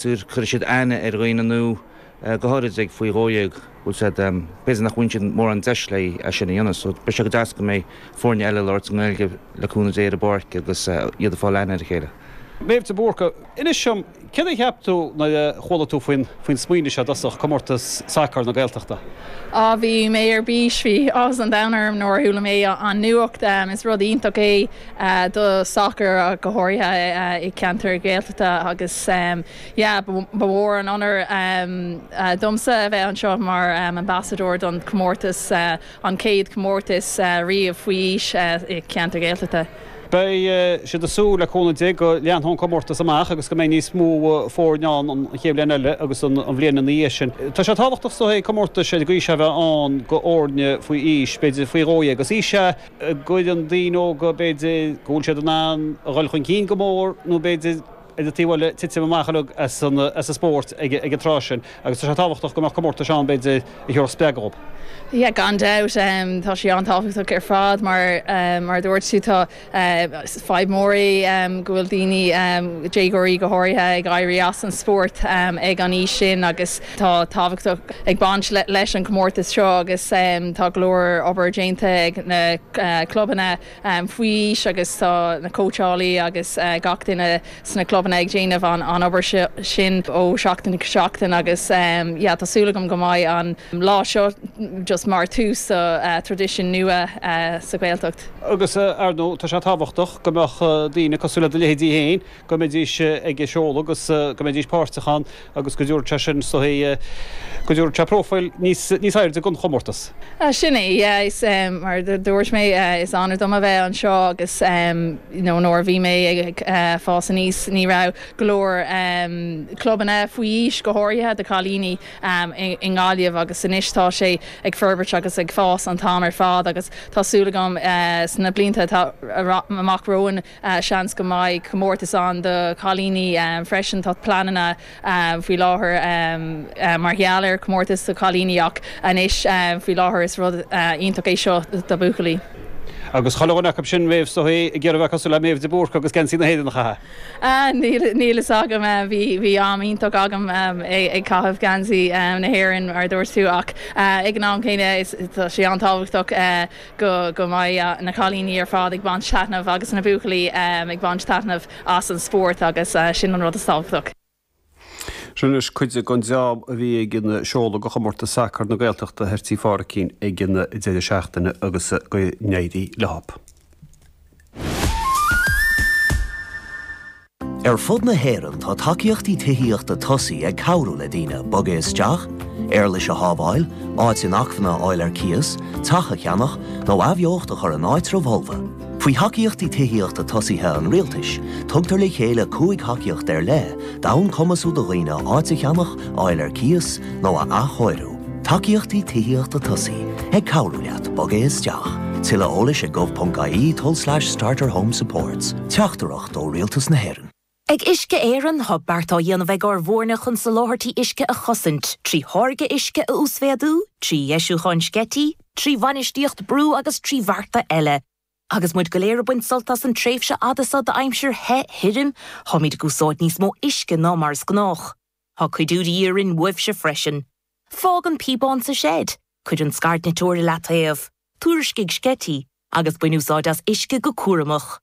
Cuirfidh siad aithne ar dhaoine nua, go háirid, ag faoi dhó dhéag, bhfuil a fhios agat, b'fhéidir nach mbíonn siad mórán deis le é sin a dhéanamh. So beidh sé go deas go mbeidh foirne eile ag labhairt i nGaeilge, le cúnamh Dé, ar an bpáirc agus iad ag fáil aithne ar a chéile. Méabh de Búrca, Inis dom, céard a cheap tú nuair a chuala tú faoin smaoineamh seo i dtosach, Comórtas Sacair na Gaeltachta? Á, bhí mé ar bís, bhí áthas an domhain orm nuair a chuala mé an nuacht. Is rud iontach é. do sacar ach go háirithe i gceantair Ghaeltachta agus ba mhór an onóir domsa a bheith anseo mar ambasadóir don chomórtas, an chéad chomórtas riamh faoi aois i gceantar Ghaeltachta. Beidh mé ag súil le cúnamh Dé go leanfadh an comórtas amach agus go mbeidh níos mó foirne ann an chéad bhliain eile agus an bhliain ina dhiaidh sin. Tá sé tábhachtach, is dóigh, comórtas ag an aois seo a bheith ann d'fhoirne faoi aois, b'fhéidir faoi dhó dhéag. Is aois a. go gcuireann daoine óga, b'fhéidir, go bhfuil siad in ann a dhul chun cinn go mór nó b'fhéidir ar an taobh eile le titim amach a bheag as an spórt ag an tráth sin agus tá sé tábhachtach go mbeadh comórtais ann, b'fhéidir, a thabharfadh spreagadh dhób. Yeah gan dabht, tá sé an-tábhachtach ar fad mar mar a dúirt tú, tá fadhb mhór í go bhfuil daoine, déagóirí go háirithe, ag éirí as an spórt ag an aois sin agus, Tá tábhachtach ag baint leis an gcomórtas seo agus tá go leor obair déanta ag na clubanna faoi aois agus tá na cóitseálaí agus gach duine sna clubanna ag déanamh an obair sin ó sheachtain go seachtain agus tá súil agam go mbeidh an lá seo just mar tús do thraidisiún nua sa Ghaeltacht. Agus, ar ndóigh, tá sé tábhachtach go mbeadh daoine cosúil le do leithéidí héin go mbeidís ag seoladh agus go mbeidís páirteach ann agus go dtabharfadh sé sin, is dóichí, go dtabharfadh sé próifil níos airde don chomórtas. Sin é, yeah, mar a dúirt mé, is onóir dom a bheith anseo agus you know nuair a bhí mé ag fás aníos ní raibh go leor clubanna faoi aois, go háirithe do chailíní, i nGaillimh agus anois tá sé ag forbairt agus ag fás an t-am ar fad agus tá súil agam sna blianta atá amach romhainn, Seans go mbeidh comórtas ann do chailíní freisin. Tá pleananna faoi láthair mar gheall ar chomórtas do chailíní ach anois faoi láthair is rud iontach é seo do bhuachaillí. Agus chuile dhuine acub sin, a Mhéabh, is dóichí, ag iarraidh a bheith cosúil le Méabh de Búrca agus geansaí na hÉireann a chaitheamh. Níl fhios agam, bhí am iontach agam ag caitheamh geansaí na hÉireann mar a dúirt tú ach ag an am céanna tá sé an-tábhachtach go go mbeidh na cailíní ar fad ag baint taitneamh agus na buachaillí ag baint taitneamh as an spórt agus sin an rud is tábhachtach. Sin anois cuid den dream a bhí ag an seoladh do chomórtas sacair na Gaeltachta thoir tí Pháraicín ag an deireadh seachtaine agus go n-éirí leo. Ar fud na hÉireann tá tacaíochtaí tithíochta tosaigh ag cabhrú le daoine bogadh isteach, éarlais a shábháil, áit inacmhainne a fháil ar cíos, teach a cheannach, nó athbheocht a chur in áitribh fholmha. Faoi Thacaíochtaí Tithíochta Tosaigh an Rialtais, tugtar le chéile cúig thacaíocht ar leith d'fhonn cumasú do dhaoine áit a cheannach, a fháil ar cíos, nó a athchóiriú. Tacaíochtaí Tithíochta Tosaigh, ag cabhrú leat bogadh isteach. Tuilleadh eolais ag gov.ie tulslais starter home supports. Teachtaireacht. ó Rialtas na hÉireann. Ag Uisce Éireann, tá beart á dhéanamh ag ár bhfoirne chun soláthairtí uisce a chosaint, trí tháirgeadh uisce a uasmhéadú, trí dheisiúchán sceití, trí bhainistíocht brú agus trí bhearta eile. Agus muid go léir ag baint sult as an tréimhse fhada seo d'aimsir the, thirim, táimid ag úsáid níos mó uisce ná mar is gnách. Tá cuidiú de dhíth orainn uaibhse freisin. Fág an píobán sa seid, cuir an scairdniteoir i leataobh, tuairiscigh sceití, agus bain úsáid as uisce go cúramach.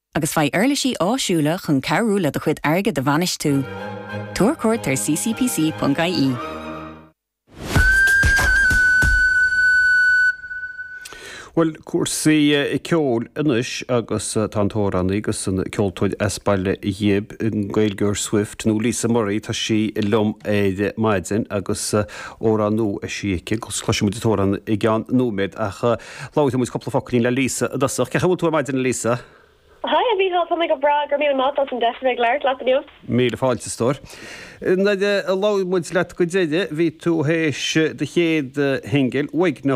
agus faigh uirlisí áisiúla chun cabhrú le do chuid airgid a bhainistiú. Tabhair cuairt ar ccpc.ie. Bhuel, cúrsaí ceoil anois agus tá an t-amhránaí agus an ceoltóir as Baile Ghib i nGaeilgeoir Swift nó Lisa Murray, tá sí liom ar maidin agus amhrán nua eisithe aici agus cloisfidh muid an t-amhrán i gceann nóiméad ach. Labhróidh muid cúpla focailín le Lisa i dtosach. Cén chaoi a bhfuil tú ar maidin, a Lisa? Haigh, a Mhíchíl, tá mé go breá. Go raibh míle maith as an deis a bheith ag labhairt leat inniu. Míle fáilte, a stór. Nuair a labhair muid leat go deireadh, bhí tú théis do chéad shingil, Uaigneach,